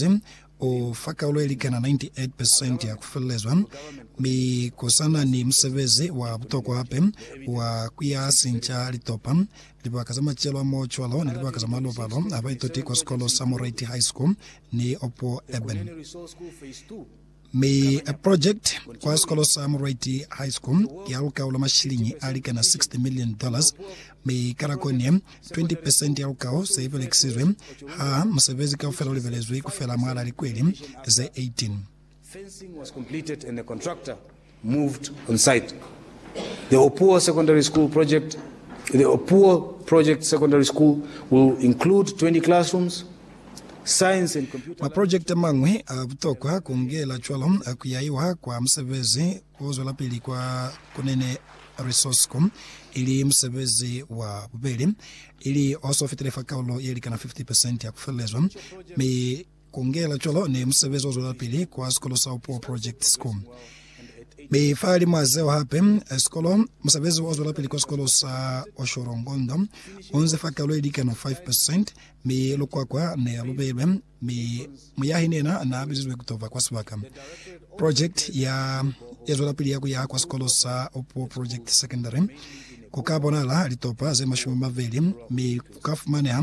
Muzalisi u fa kaulo ye likana 98 percent ya ku felelezwa, mi ku sa na ni musebezi wa butokwa hape wa ku ya sinca litopa. Libaka za macelo a mo cwalo ni libaka za malobalo ha ba itoti kwa sikolo sa Moreiti High School ni Opuo Urban. Mi a project kwa sikolo sa Murwaiti High School ya lukaulo mashilingi a likana 60 million dollars, mi ka nako ni ye 20 percent ya lukao se belekisizwe ha musebezi kaufela ulibelezwi kufela mwala likweli ze 18. Fencing was completed and the contractor moved on site the Opuwo Secondary School project. The Opuwo Project Secondary School will include 20 classrooms, science and computer. Maprojekiti amañwi a butokwa ku ngela cwalo a ku yaiwa kwa musebezi o zwelapili kwa Kunene Resource Co. ili musebezi wa bubeli, ili o so fitile fa kaulo ye likana 50 percent ya ku felelezwa mi Ku ngela cwalo ne musebezi o zwelapili kwa Sikolo sa Upuwa Project School. Mi fa limwa zeo hape, sikolo, musebezi o zwelapili kwa Sikolo sa Oshorongondo u nze fa kalo ye likano 5%, mi lukwakwa ne lu belwe, mi muyahi ni yena na bizizwe ku to ba kwa sibaka. Project ya ye zwelapili ya ku yaha kwa Sikolo sa Upuwa Project Secondary ku ka bonahala litopa ze mashumi a mabeli, mi ku ka fumaneha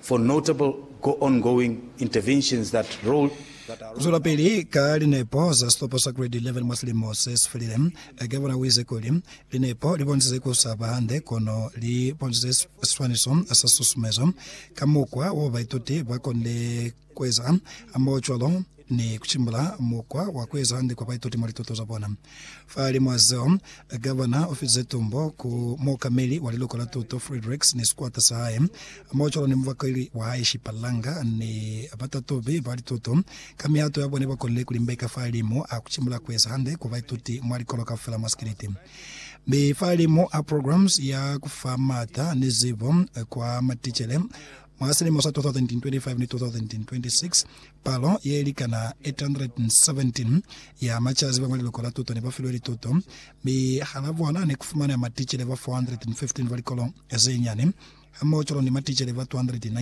for notable go ongoing interventions that role that are Zwelapili ka linepo za sitopo sa Grade 11 mwa silimo se si felile. Gavana u ize kuli, Linepo li bonisize ku sa ba hande kono li bonisize siswaniso sa susumezo ka mukwa w'o baituti ba konile Kueza mo cwalo ni kucimbula mukwa wa kueza hande kwa baituti mwa lituto za bona. Fahalimw'a zeo, Gavana ufize tumbo ku muokameli wa liloko la tuto Friedrichs ni sikwata sa hae, mo cwalo ni mubakweli wa hae Shippa Langer ni batatubi ba lituto ka mihato ya bona ibakonile kulimbeka fahalimu a kucimbula kueza hande kwa baituti mwa likolo kaufela mwa sikeleti mi fahalimu a programs ya kufa maata ni zibo kwa maticele Mwa silimo sa 2025 ni 2026, palo ye likana 817 ya macaziba mwa liloko la tuto ne ba filwe lituto, mi hala bona ne ku fumaneha maticele ba 415 ba likolo ze nyane, hamoho cwalo ni maticele ba 219